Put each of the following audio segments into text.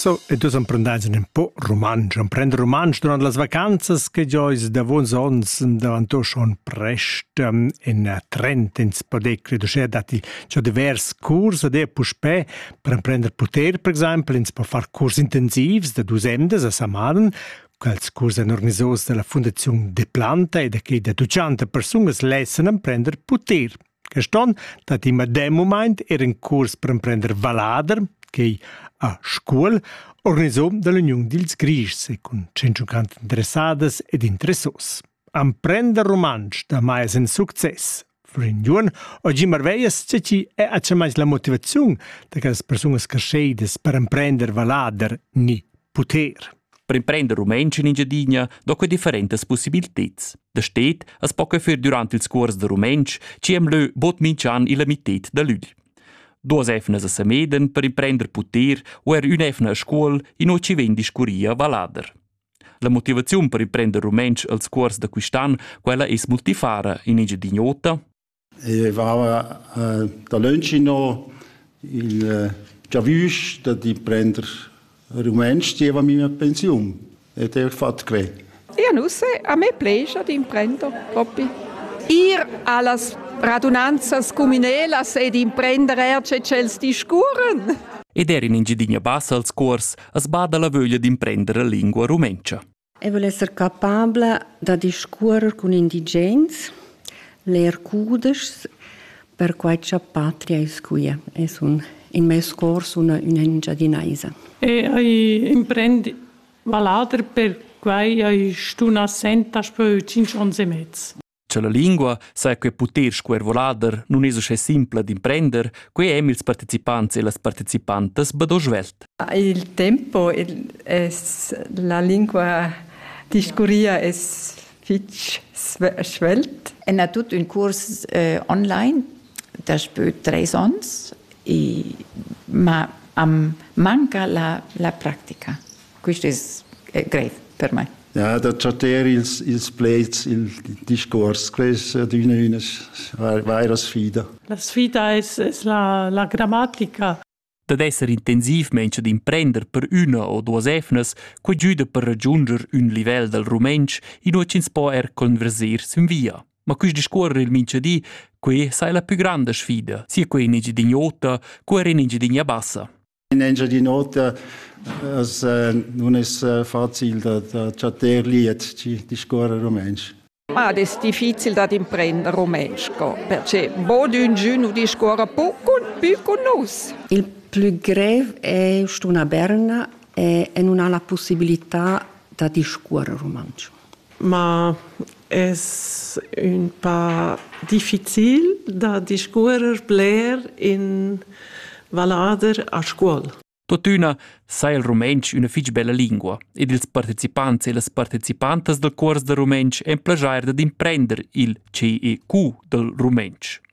So, e dus emprendais un po rumantsch. Emprend rumantsch durant las vacanzas che giois davons ons davanto schon prest in trend ins podecri uschè datti già divers curs ed è puspè per emprender poter per exempel ins po far curs intensivs da dus emdas a Samaden quels curs èn organisados dalla Fundaziun de Planta e da che da 200 persunas lessan emprender poter. Quest onn dat il medem mumaint er in curs per emprender vallader che a Scuol, organisò dall'Uniun dils Grischs e cun 150 interessadas ed interessos. Emprender rumantsch da mai es in success. Florian Juon o Jim Arveias ce chi è acciamais la motivaziun da quellas persunas crescheidas per emprender vallader ni puter. Per imprender rumantsch in Engiadina do quei differentas possibilteds. Da stet as po che fer durant ils cuors da rumantsch, ci am leu bod minch'an illa mitted da lügl. Duas efnas a Sameden per imprender puter u er ün'efna a scuol in o ci vegn discurria a Valader. La motivaziun per imprender rumantsch als cuors da quist'an, quella es multifara in Engiadin'Ota, e vava dalönch inno il giavüsch da d'imprender rumantsch zieva mia pensiun ed eir fat que. Ja nu se, a me plescha d'imprender propi. Ir a las radunanzas cumünelas ed imprender eir che tschels discurren. Ed er in Engiadina Bassa als cuors as bada la vöglia d'imprender la lingua rumentscha. Eu voul esser capabla da discuorrer cun indigens, ler cudeschs, perquai cha patria es quia e sun in meis cor sun üna Engiadinaisa. E ai imprend vallader perquai ai stun assent daspö tschinch ons e mez. Cha la lingua saja que puter scuervolader nun es uschè simpla d'imprender, quai hem ils partecipants e las partecipantas be do svelt. Il tempo es la lingua discurria es fich svelt. En ha tut ün curs eh, online daspö tres ons e ma am manca la, la practica. Quist es greiv per mai. Ja, da chatter ils, ils pleds, il discuors, quest è adüna üna vaira sfida. La sfida es, es la, la grammatica. Dad esser intensivmaing ad imprender per üna o duos efnas, quai güda per ragiunder ün livel dal rumentsch inua ch'ins po er converser sin via. Ma quist discuorrer il minchadi, quai sai la pü granda sfida, sia quai in Engiadini'ota, co er in Engiadinia bassa. In Engiadin'Ota as nun es facil da da chattar liet chi discuorra rumantsch. Ma ed es difficil dad imprender rumantsch co, perche bod üngün nu discuorra pü cun pü cun nus. Il plü grev è st'una berna e, e nun ha la pussibilità da discuorre rumantsch. Ma es ün pa difficil da discuorrer bler in vallader a Scuol. Tuttina sai il rumentsch üna fich bella lingua ed ils partecipants e las partecipantas dal cuors da rumentsch en plajair dad imprender il CEQ dal rumentsch.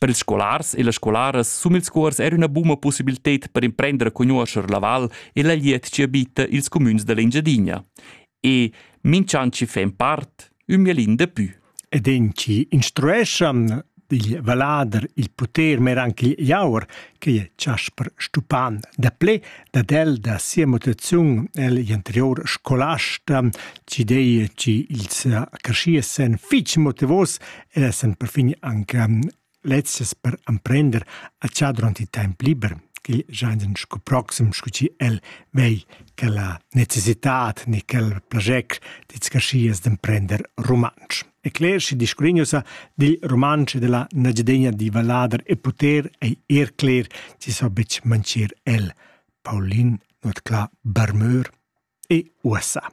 Per ils scolars e las scolaras sum ils cuors era üna buna possibilted per imprender a conoscer la val e la liet chi abita ils cumüns dell'Engiadina. E minch'an chi fa in part, ün mielin de pü. Ed in chi instrueschan digl valader il poter mer anche Jauer, che è Chasper Stupan, da ple dad el da sia mutazione el anterior scolasta, ci dei ci ils cresciesen fitch motivos ed essan perfin anc lezzas per emprender a char durant il temp liber ch'il gianin sco proxim, sco chi el vei quella necessitat ni quel plagec d'etscarschias d'emprender rumantsch. E cler schi discurignusa dil rumantsch e della nagiadegna di vallader e poter ei er cler ci so betg mancir el. Paulin, not cla Bermeur e USA.